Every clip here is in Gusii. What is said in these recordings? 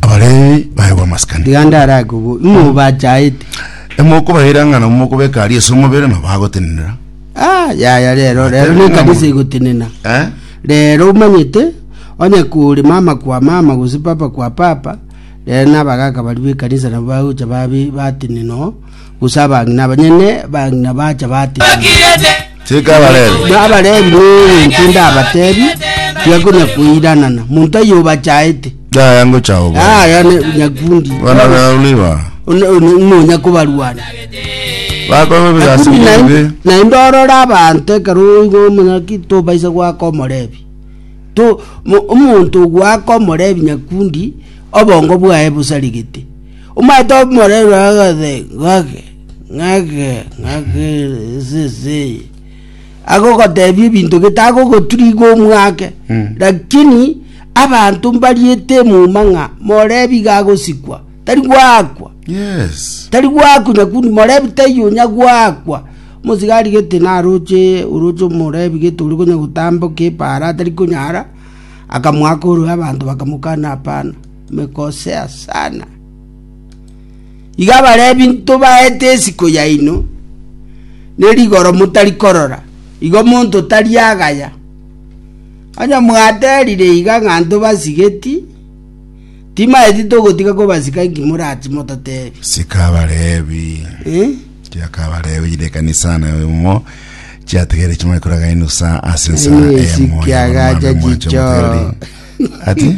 Abaleebi baye b'amasikani. Iga ndarake obo ng'a obachaete. Emokobaira ng'a nabo mokobeka aria ase omobere, na bagotenenera. Ah, yaya rero rero Atebe nekanisa ng'amwe. igotenena Eh? rero omanyete onye kore mama kwa mama gose papa kwa papa rero nabagaka baria b'ekanisa nabo bagocha babe batenena oo Gose abang'ina abanyene bang'ina bacha bateemana. Chika abarebe. Na Abalevi n'ebinto ndabatebi, tiga konya koiranana, monto aye obachaete. Yaya ngocha obo. Aya ne nyakundi. Bana bao niba. One- one- Ng'onya kobarwana. Bakoba ebigasi Nakundi naende- bibe. naende orore abanto ekero oigo omonaki tobaisa goaka omorebi To- mo- omonto ogoaka omorebi nyakundi obongo bwaye bosarigete Omanyete omorero agothe gake, gake, gake eseseye, agogotebia ebinto gete tagogoturiga omwake Mm. lakini abanto mbariete emuma ng'a morebi gagosikwa tari gwakwa Yes. tari gwakwa nyakundi morebi taiyo onya gwakwa omosigari gete naroche oroche omorebi gete ori konya gotamboka epaara atari konyara akamwaka orwe abanto bakamokana hapana omekosea sana. Iga abarebi ntobaete esiko yaino, ne rigoro motari korora, igo monto tari agaya. Onye mwaterire iga ng'a ntobasigeti, timaeti togotiga kobasika inki morati mototebi. Sika abarebi. Eh? Tiaka abarebi jire ekanisa na omo chiategere chimwe kuraga inusa ase ensa Aye, eye moyo sikiagacha bamwambe mwache chicho. moteri. Ati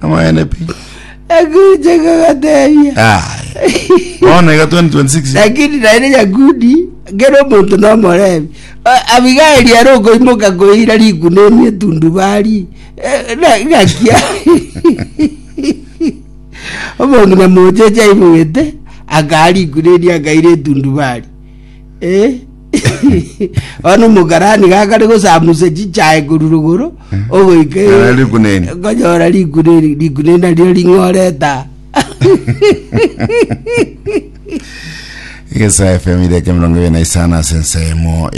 Amang'ana pi. Akacha kagatebia. Aye. Bono iga 2026. lakini naende nyakudi kera omonto nomorebi abigaeli are okoimoka koira riguna eri etundubari Eh, na- ngakia omong'ina mocheche aimogete akaa riguna eri akaira etundubari Bono omokarani gakare gosamusa chichae korwa rogoro ogoika e- Nara riguna eri. konyora riguna eri riguna eri nario ring'oreta Egesae FM ireke mirongo ibere na isano ase ensemo